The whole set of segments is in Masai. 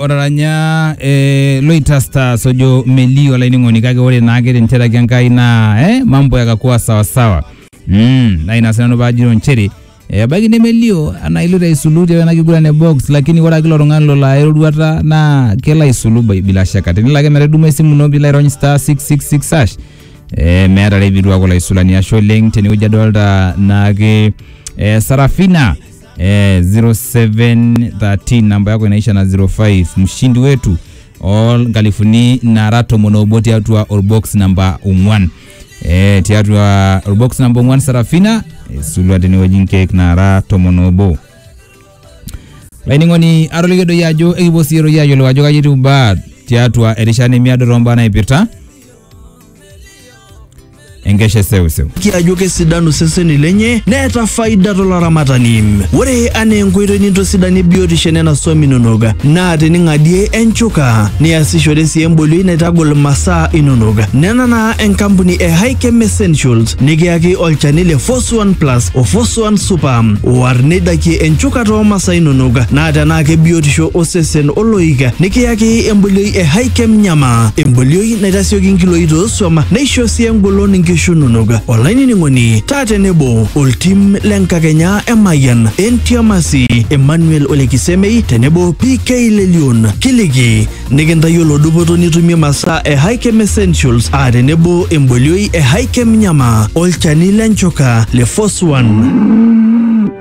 otaranya eh, loitasta sojo melio olainining'oni kake ore naake tencheraki enkai naa eh, mambo yakakuwa sawasawa mm, na ina sinanu paajito nchere eh, ebaiki nemelio anaa iloito aisulu tiana kiguran e box lakini ore ake ilo tung'ani lolo aya eroruata naa kelo aisulu bai- bila shaka tenelo ake metaduma esimu ino pilo airony star 666 hash eh, meeta rebitua kulo aisulani ashe oleng tenewueji adolta naake eh, sarafina eh, 0713 namba yako inaisha na 05 mshindi wetu o nkalifuni nara tomon obo tiatua orbox namba ong'uan eh, tiatua orbox namba ong'uan sarafina isulua tenewueji nkeek nara tomon obo laining'oni atolikio doi ajo ekipuo sii doi ayiolou ajo kaji etiu imbaa tiatua erishata nemiado too mbaa naipirta enkeshe seuseu. kiajo kesidanu seseni lenye neeta faida tolaramatani ore anaa enkoitoi nintosidanie biotisho enena swam inonok naa tening'adie enchuka niasishore sii embolioi naitagol masaa inonok nena naa enkampuni e Hikem Essentials nikiyaki olchani le Fos 1 Plus o Fos 1 Super oar neidakie enchuka too masaa inonok naa tenaa kebiotisho osesen oloik nikiyaki embolioi e Hikem Nyama embolioi naitasioki nkiloi toosuam neisho sii engolon nkishu inonok. Olainining'oni taa tenebo oltim le nkakenya e Mayian, Entiamasi, Emmanuel Ole Kisemei tenebo PK Lelion kiliki nikintayiolo dupoto nitumie masaa e Hikem Essentials aa tenebo embolioi e Hikem Nyama olchani le nchoka le Foswan.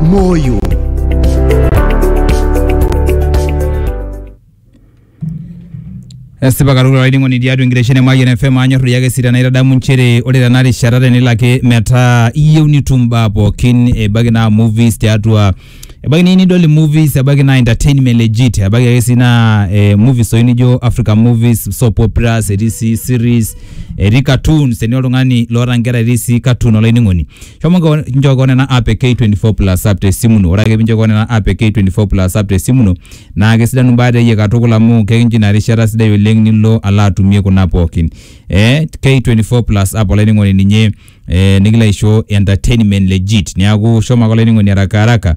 moyo. esipa katukul olainining'oni tiatua enkitesheni e Mayian FM anyorru iyake sii tenaitadamu nchere ore tena rishata tenelo ake metaa iyieu nitum imbaa pookin ebaiki naa movies tiatua ebaiki niyieu nidol movies ebaiki naa entertainment legit ebaiki ake sii naa eh, movies toi nijo African movies soap operas etii sii series etii cartoons teni oltung'ani loota inkera etii sii cartoon olainining'oni shomo ngo- njoko nena app e k24 plus app te simu ino ore ake pinjoko nena app e k24 plus app te simu ino naa kesidanu imbaa teyie katukul amu kekincho ina rishata sidai oleng nilo alo atumie kuna pookin eh, k24 plus app olainining'oni ninye eh, nikilo aisho entertainment legit niaku shomo ake olainining'oni haraka haraka